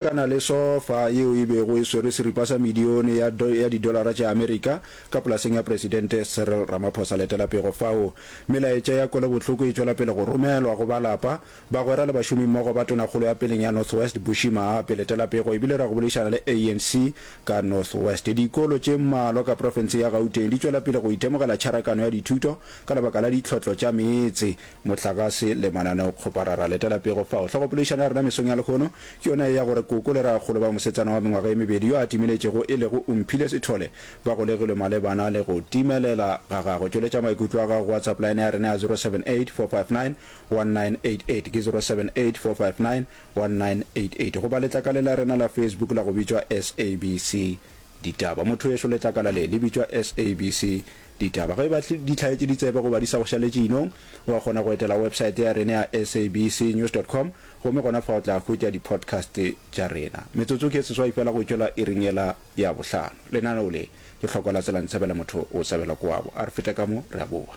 Ka na le sofa yeo e bego e swere seripa sa medione ya ya didolara tša Amerika ka polaseng ya Presidente Cyril Ramaphosa. Letela pego fao. Melaetša ya kwelobohloko e tšwela pele go romelwa go ba lapa, bagwera le bašomimmogo ba Tonakgolo ya peleng ya North West, Bushy Maape. Letela pego e bile ra go boledišana le ANC ka North West. Dikolo tše mmalwa ka profense ya Gauteng di tšwela pele go itemogela tšharakano ya dithuto ka lebaka la ditlhohlo tša meetse. Mohlagase le mananeo kgopara ra letela pego fao. Hlogopologišano ya rena mesong ya lehono ke yona ye ya gore Koko le Ragakgolo ba mosetsana wa mengwaga ye mebedi yo a timeletšego e lego Umphile Sithole ba golegilwe malebana le go timelela ga gagwe. Tšweletša maikutlo a gago go WhatsApp line ya rena ya 0784591988 ke 0784591988 goba letlakale la rena la Facebook la go bitšwa SABC Ditaba. Mothoyešo letlakala le le bitšwa SABC Ditaba ge e ba di hlaetše ditsebe goba di sa go šaletše inong, wa kgona go etela websaete ya rena ya sabcnews dot com gomme gona fa o tla hwetša di-podcast tša rena. Metsotso ke e seswai feela go tšwela iring yela ya bohlano. Lenaneo le, Lehlokwa la Tsela Ntshabela Motho o Tshabela Koabo a re feta ka mo, re a boa.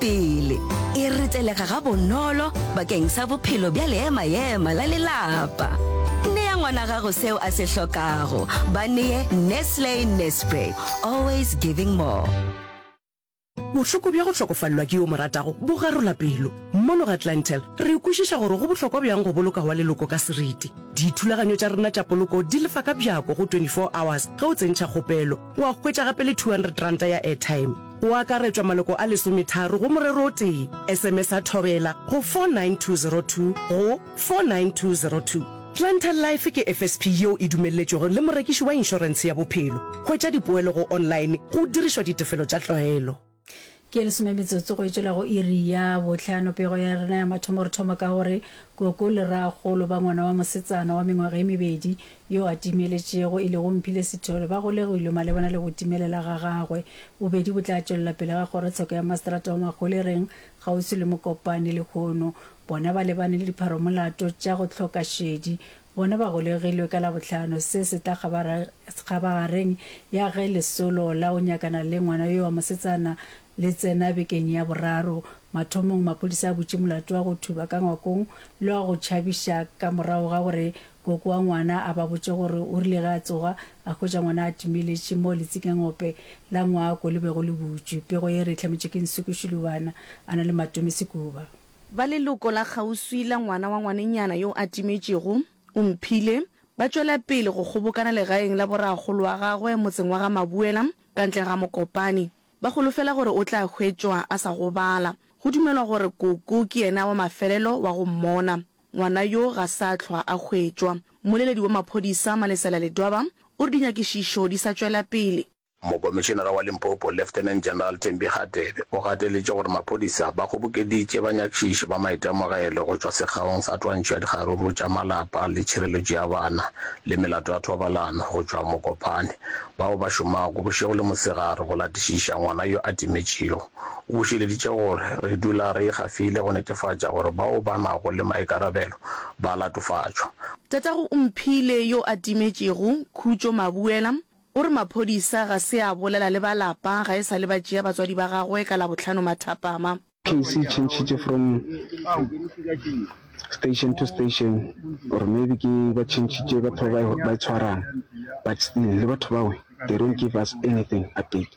Pele, e retelega gabonolo bakeng sa bophelo bja leema-ema la lelapa. Nea ngwana gago seo a se hlokago. Ba nee Nestle Nespray, always giving more. Bohloko bja go hlokofalelwa ke yo o mo ratago bo garola pelo. Mono ga Clientele, re kwešiša gore go bohlokwa bjang go boloka wa leloko ka seriti. Dithulaganyo tša rena tša poloko di lefa ka bjako go 24 hours ge o tsentšha kgopelo, wa hwetša gape le 200 ranta ya airtime. go akaretšwa maloko a lesometharo go morero o tee, SMSA Thobela go 49202 go 49202. Planter Life ke FSP yeo e dumelletšwego le morekiši wa inšorense ya bophelo. Hwetša dipoelo go online go dirišwa ditefelo tša tlwaelo. Ke ye lesome metsotso go etšwela go iri ya bohlano. Pego ya rena ya mathomo re thoma ka gore Koko le Rraagolo ba ngwana wa mosetsana wa mengwaga e mebedi yo a timeletšego, e lego Mphile Sithole, ba golegilwe malebana le go timelela ga gagwe. Bobedi bo tla tšwelela pele ga kgorotsheko ya maseterata wa Mahwelereng, kgauswi le Mokopane lehono. Bona ba lebane le dipharomolato tša go hloka šedi. Bona ba golegilwe ka Labohlano, se se tla kgabagareng ya ge lesolo la go nyakana le ngwana yo wa mosetsana le tsena bekeng ya boraro. Mathomong maphodisa a butše molato wa go thuba ka ngwakong le wa go tšhabiša ka morago ga gore Koko wa ngwana a ba botša gore o rile ge a tsoga, a hwetša ngwana a timeletše mo letsikangope la ngwako le bego le butšwe. Pego ye e re e hlametšwe ke Nsuku Shilubana, a na le Matome Sekuba. Ba leloko la kgauswi la ngwana wa ngwanenyana yo a timetšego, o mphile, ba tšwela pele go kgobokana legaeng la borakgolo wa gagwe motseng wa ga Mabuela ka ntle ga Mokopane. Ba holofela gore o tla hwetšwa a sa gobala. Go dumelwa gore Koko ke yena wa mafelelo wa go mmona. Ngwana yo ga sa hlwa a hwetšwa. Mmoleledi wa maphodisa Malesela Ledwaba o re dinyakišišo di sa tšwela pele. Mokomišenara wa Limpopo Lieutenant General Thembi Hadebe o gateletše gore maphodisa ba kgobokeditše banyakišiši ba maitemogelo go tšwa sekgaong sa twantšho ya dikgaruru tša malapa le tšhireletšo ya bana le melato ya thobalano go tšwa Mokopane bao ba šomago bošego le mosegare go latišiša ngwana yo a timetšego O bušeleditše gore, Re dula re ikgafile go netefatša gore bao ba nago le maikarabelo ba latofatšwa. Tatago o mphile yo a timetšego, Khutšo Mabuela, o re maphodisa ga se a bolela le ba lapa ga e sa le ba tšea batswadi ba gagwe ka Labohlano mathapama. Case e change-tše from station to station or maybe ke ba change-tše batho ba ba e tshwarang but still le batho bao they don't give us anything update.